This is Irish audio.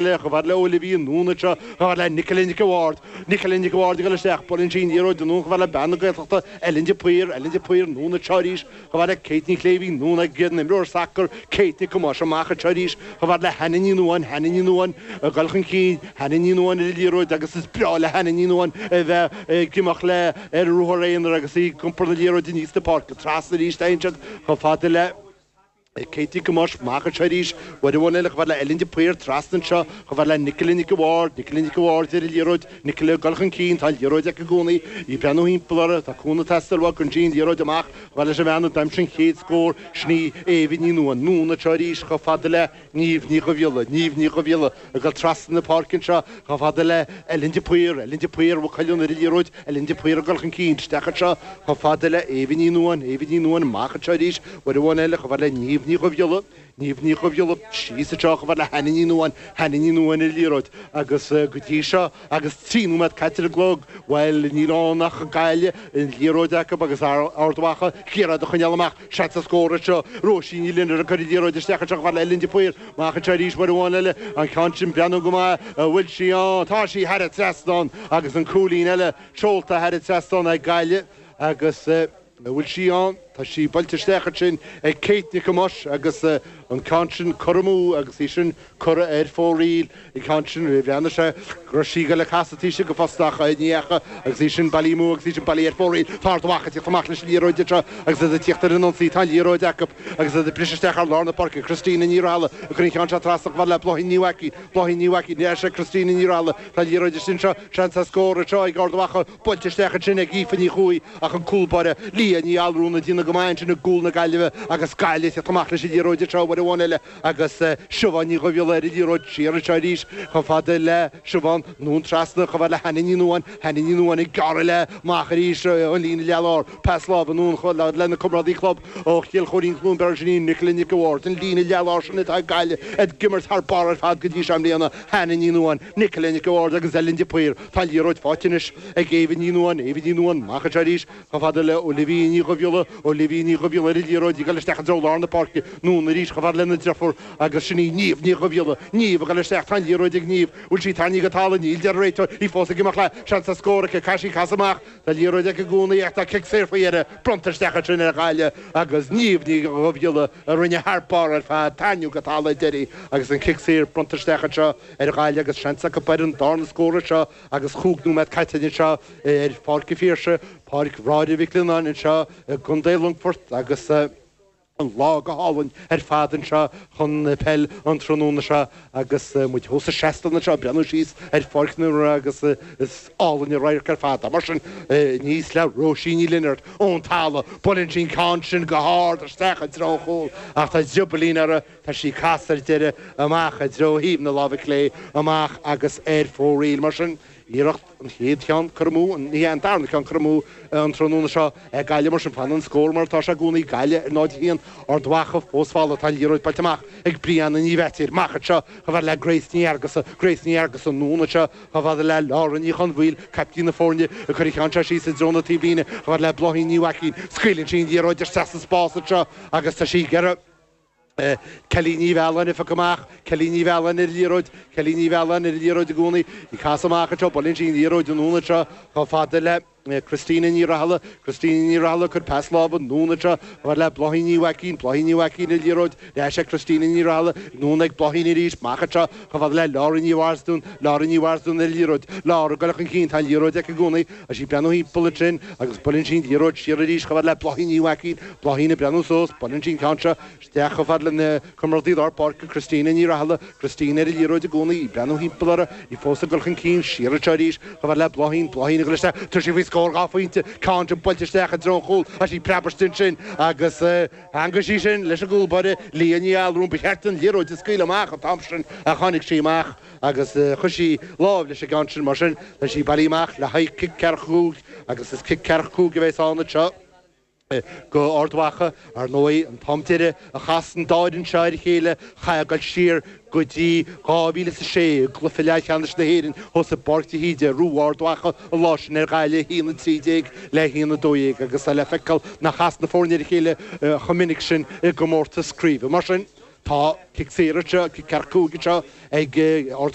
Léigh chomh fada le Olivia anonn anseo, chomh fada le Nicola Nic a' Bhaird, Nicola Nic a' Bhaird ag dul isteach, buaileann sí an liathróid anonn, chomh fada le bean na Gaeltachta, Ellen de Paor, Ellen de Paor anonn anseo arís, chomh fada le Kate Ní Shléibhín anonn ag an imreoir sacair, Kate Nic Thomáis amach anseo arís, chomh fada le Hannah Ní Nuadháin, Hannah Ní Nuadháin ag dul chun cinn, Hannah Ní Nuadháin ar an liathróid agus is breá le Hannah Ní Nuadháin a bheith ag imeacht léi ar ruathar aonair agus í ag iompar na liathróide aníos an pháirc, trasna arís anseo, chomh fada le. Kate Nic Thomáis amach anseo arís, uair amháin eile chomh fada le Ellen de Paor trasna anseo, chomh fada le Nicola Nic a' Bhaird, Nicola Nic a' Bhaird ar an liathróid, Nicola ag dul chun cinn, tá an liathróid aici i gcónaí, í ag breathnú thimpeall uirthi, tá cúnamh ag teastáil uaithi, cuireann sí an liathróid amach, chomh fada leis an mbean a d'aimsigh an chéad scór, sin í Éabha Ní Nuadháin, anonn anseo arís, chomh fada le Niamh Ní Dhubhghiolla, Niamh Ní Dhubhghiolla, Ag dul trasna na páirce anseo chomh fada le Ellen de Paor, Ellen de Paor, Mhaigh Cuilinn, ar an liathróid, Ellen de Paor ag dul chun cinn, isteach anseo chomh fada le Éabha Ní Nuadháin, Éabha Ní Nuadháin, amach anseo arís, uair amháin eile chomh fada le Niamh Ní Dhubhghiolla, Niamh Ní Dhubhghiolla, síos anseo chomh fada le Hannah Ní Nuadháin, Hannah Ní Nuadháin ar an liathróid agus go dtí seo agus trí nóiméad caite ar an gclog, bhuel níl ann ach Gaillimh, an liathróid acu agus Ard Mhacha ag iarraidh iad a choinneáil amach. Seans ar scór anseo Róisín Ní Lionaird ag cur an liathróid isteach anseo chomh fada le Ellen de Paor. Amach anseo arís uair amháin eile. An ceann sin ag breathnú go maith an bhfuil sí ann. Tá sí thar an trasnán agus an cúilín eile seolta thar an trasnán ag Gaillimh agus an bhfuil sí ann? Tá sí buailte isteach ansin ag Kate Nic Thomáis agus an ceann sin curtha amú agus í sin Curtha ar fóraoil an ceann sin, bhreathnaigh sé go raibh sí ag dul ag casadh taobh istigh den phosta ach ní dheachaigh agus í sin bailithe amú agus í sin bailithe ar fóraoil tá Ard Mhacha ag teacht amach leis an liathróid anseo agus iad ag tíocht ar an ionsaí tá an liathróid acu agus iad ag briseadh isteach thar lár na páirce Christina Ní Rathaille ag cur an ceann seo trasna chomh fada le Bláithín Ní Mhaicín Bláithín Ní Mhaicín ar ais ag Christina Ní Rathaille tá an liathróid istigh anseo seans ar scór anseo ag Ard Mhacha buailte isteach ansin ag Aoife Ní Chuaigh ach an cúlbáire Leah Ní Allmhuráin ag déanamh go maith ansin i gcúl na Gaillimhe agus Gaillimh ag teacht amach leis an liathróid anseo uair amháin eile agus Siobhán Ní Dhubhghiolla ar an liathróid, siar anseo arís chomh fada le Siobhán anonn trasna, chomh fada le Hannah Ní Nuadháin, Hannah Ní Nuadháin ag gearradh léi amach arís an líne leathlár, pas láimhe anonn chomh fada lena comrádaí club ó Chill Choirín, Cluain Bheirn, sin í Nicola Nic a' Bhaird, an líne leathlár sin atá ag Gaillimh ag imirt thar barr ar fad go dtí seo i mbliana, Hannah Ní Nuadháin, Nicola Nic a' Bhaird agus Ellen de Paor, tá an liathróid faighte anois ag Éabha Ní Nuadháin, Éabha Ní Nuadháin amach anseo arís, Chomh fada le Olivia Ní Dhubhghiolla, Olivia Ní Dhubhghiolla ar an liathróid ag dul isteach i dtreo lár na páirce, anonn arís chomh fada lena deirfiúr agus sin í Niamh Ní Dhubhghiolla, Niamh ag dul isteach, tá an liathróid ag Niamh, an bhfuil sí tarraingthe go talamh, níl a deir an réiteoir, í fós ag imeacht léi, seans ar scór aici, caithfidh sí casadh amach, tá an liathróid aici i gcónaí ach tá cic saor faoi dheireadh, bronnta isteach ansin ar Ghaillimh agus Niamh Ní Dhubhghiolla a rinne thar barr ar fad, tarraingthe go talamh sa deireadh agus an cic saor bronnta isteach anseo ar Ghaillimh agus seans acu b'fhéidir ar an darna scór anseo Agus chúig nóiméad caite againn anseo ar Pháirc a' Phiarsaigh, Páirc Bhráithre Mhic Lionnáin anseo i gContae Longfoirt agus an lá go hálainn ar fad anseo chun peil an tráthnóna seo agus muid thuas sa seastán anseo ag breathnú síos ar pháirc na himeartha agus is álainn an radharc ar fad é. Mar sin, aníos le Róisín Ní Lionaird ón talamh, buaileann sí an ceann sin go hard isteach i dtreo an chúil ach tá driobaillín ar a Tá sí casta ar deireadh amach i dtreo thaobh na láimhe clé amach agus ar fóraoil. Mar sin, iarracht an chéad cheann, curtha amú, ní hea, an darna ceann, curtha amú, an tráthnóna seo ag Gaillimh. Mar sin, fanann an scór mar atá sé i gcónaí, Gaillimh ar 0-1. Ard Mhacha fós folamh ach tá an liathróid buailte amach ag Brianna Ní Bheatéir. Amach anseo chomh fada le Grace Ní Fheargusa. Grace Ní Fheargusa anonn anseo chomh fada le Lauren Ní Chonmhaoil, caiptín na foirne, ag cur an cheann seo síos i dtreo na taobhlíne chomh fada le Bláithín Ní Mhaicín. Scaoileann sí an liathróid isteach sa spás anseo agus tá sí ag iarraidh. Kellie Ní Mhealláin a phiocadh amach, Kellie Ní Mhealláin ar an liathróid, Kellie Ní Mhealláin ar an liathróid i gcónaí, ag casadh amach anseo, buaileann sí an liathróid anonn anseo chomh fada le Christina Ní Rathaille, Christina Ní Rathaille ag cur pas láimhe anonn anseo chomh fada le Bláithín Ní Mhaicín, Bláithín Ní Mhaicín ar an liathróid, ar ais ag Christina Ní Rathaille, anonn ag Bláithín arís, amach anseo chomh fada le Lara Ní Mharsden, Lara Ní Mharsden ar an liathróid, Lara ag goil chun cinn, tá an liathróid aici i gcónaí, Is í ag breathnú timpeall ansin agus buaileann sí an liathróid siar arís chomh fhad le Bláithín Ní Mhaicín, Bláithín ag breathnú suas, buaileann sí an ceann seo isteach chomh fad lena comrádaí lár páirce Christina Ní Rathaille, Christina ar an liathróid i gcónaí, í ag breathnú timpeall uirthi, í fós ag dul chun cinn, siar anseo arís chomh fhad le Bláithín, Bláithín ag dul isteach, tabharfaidh sí faoi scór dhá phointe, ceann seo buailte isteach i dtreo an chúil, tá sí preabtha ansin agus theagmhaigh sí sin leis an gcúl báire Leah Ní Allúráin, ba cheart di an liathróid a scaoileadh amach an t-am sin ach tháinig sí amach. agus chuir sí láimh leis an gceann sin. Mar sin, tá sí bailithe amach le haghaidh cic ceathracha cúig agus is cic ceathracha cúig a bheas ann anseo do Ard Mhacha. Ar ndóigh, an t-am deireadh a chas an dá fhoireann seo ar a chéile, chaithfeá a ghoil siar go dtí dhá mhíle is a sé i gcluiche leathcheannais na hÉireann thuas i bPáirc de hÍde, ar bhuaigh Ard Mhacha an lá sin ar Ghaillimh 1-13 le 1-12 agus tá le feiceáil nár chas na foirne ar a chéile chomh minic sin i gcomórtas craoibhe. Mar sin, tá cic saor anseo, cic ceathracha cúig anseo ag.